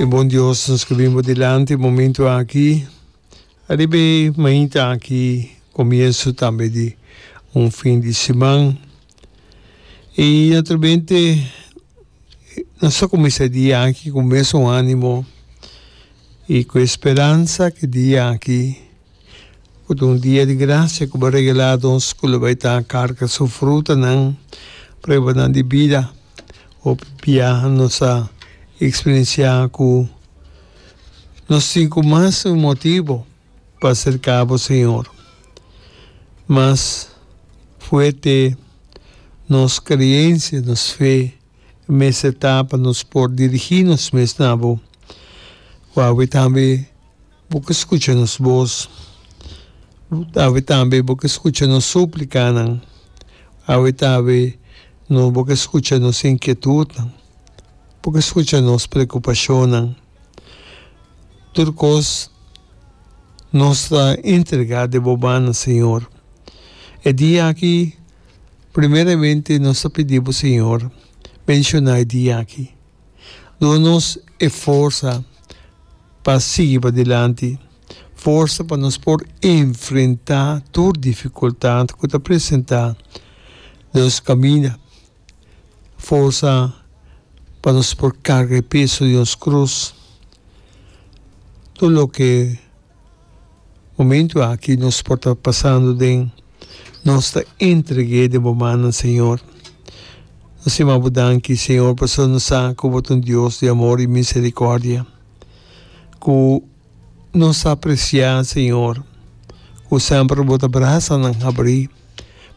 E bon Dios, nos ke bin bo dilanti e momentu aki, ariba e mainta aki, komienso tambe di un fin di siman. I naturalmente nos ta kuminsá e dia aki ku mesun ánimo i ku e speransa ku e dia aki, Cu ta un dia di gracia cu bo a regela nos cu lo bay ta carga su frutanan, pruebanan di bida. Hopi bia nos a experiencia cu nos tin cu mas motibo pa acerca bo, Señor. Mas fuerte nos creencia, nos fe, mester ta pa nos por dirigi nos mes na bo. Wawe tambe. Bo ke skucha nos bos, awe tambe bo ke skucha nos súplikanan, awe tambe no bo ke skucha nos inkietutnan, bo ke skucha nos preokupashonnan. Tur kos nos ta entregá den bo mannan, Señor. E dia aki primeramente nos ta pidi bo, Señor, menshoná e dia aki. Duna nos e forsa pa sigui padilanti, forsa pa nos por enfrentá tur difikultat ku ta presentá den nos kaminda, forsa pa nos por karga e peso di nos krus, tur loke. Momentu aki nos por ta pasando den nos ta entreg'é den bo mannan Señor. Nos tin m'a bo danki Señor pasobra nos sa ku bo ta un Dios di amor i miserikòrdia, ku nos ta apresiá Señor, ku semper bo ta brasanan habrí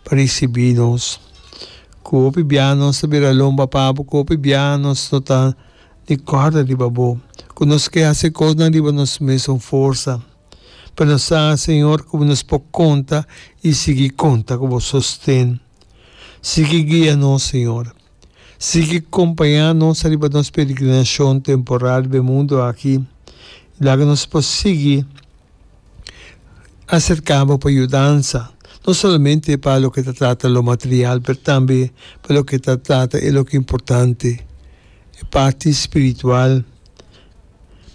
pa risibí nos, ku hopi biaha nos ta bira lomba pa bo, ku hopi biaha nos no ta. di corda riba bo. Cu nos ke haci cosnan riba nos mes un forsa, pero nos sa, Señor, cu nos por conta y sigui conta cu bo sosten. Sigui guia nos, Señor. Sigui compaña nos riba nos peregrinacion temporal riba e mundo aki. Laga nos por sigui acerca bo pa yudansa, no solamente pa loke ta trata lo material, pero tambe pa loke ta trata e loke importante. E parti spiritual.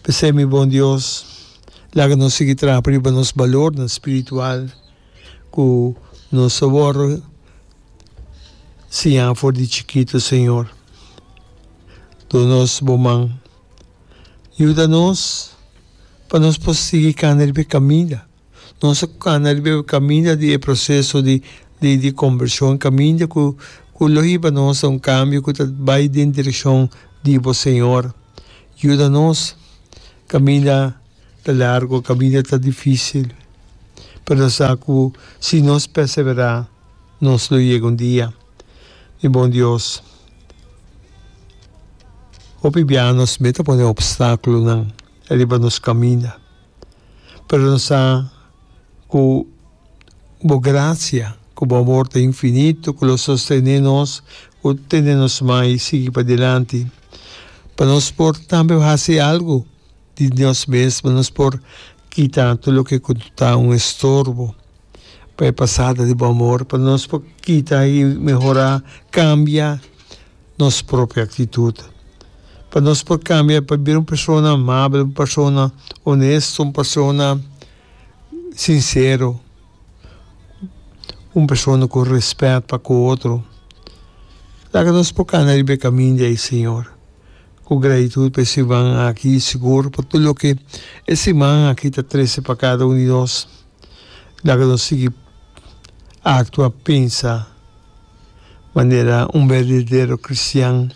P'esei, mi bon Dios, laga nos sigui traha pa riba nos balornan spiritual cu nos a wor siña for di chikitu, Señor. Duna nos bo man. Yuda nos pa nos por sigui cana riba e caminda. Nos a kana riba e kaminda di e proseso di di kombershon, kaminda ku ku lo hiba nos ta un kambio ku ta bai den direkshon di bo, Señor. Yuda nos. Kaminda ta largu, kaminda ta difisil, pero no sa ku si nos perseverá nos lo yega un dia. Mi bon Dios, hopi bia nos mester pone opstákulonan riba nos kaminda. pero no sa cu bo gracia cu bo amor ta infinito cu lo sostene nos, cu tene nos mai sigui padilanti pa nos por tambe haci algo di nos mesmo, nos por kita tur loke cu ta un estorbo pa e pasada di bo amor, pa nos por kita y mehora, cambia. nos propio aktitut, pa nos por kambia pa bira un persona amabel, un persona onesto, un persona sinsero, un persona ku rèspèt pa ku otro. Laga nos por kanda riba e kaminda ei, Señor, ku gratitut pa e siman aki i sigur pa tur loke e siman aki ta trese pa kada un di nos. laga nos sigui aktua, pensa manera un berdadero kristian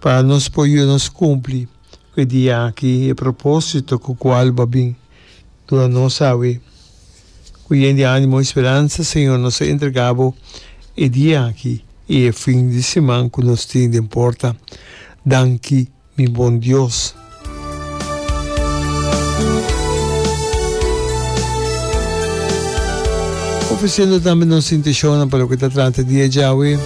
pa nos por yuda nos kumpli ku e dia aki, e propósito ku kual bo a bin duna nos awe. Ku yen di ánimo i speransa, Señor, nos a entregá bo e dia aki i e fin di siman ku nos tin den porta. Danki. mi bon Dios. Ofreciendo tambe nos intenscionnan pa loke ta trata dia djawe.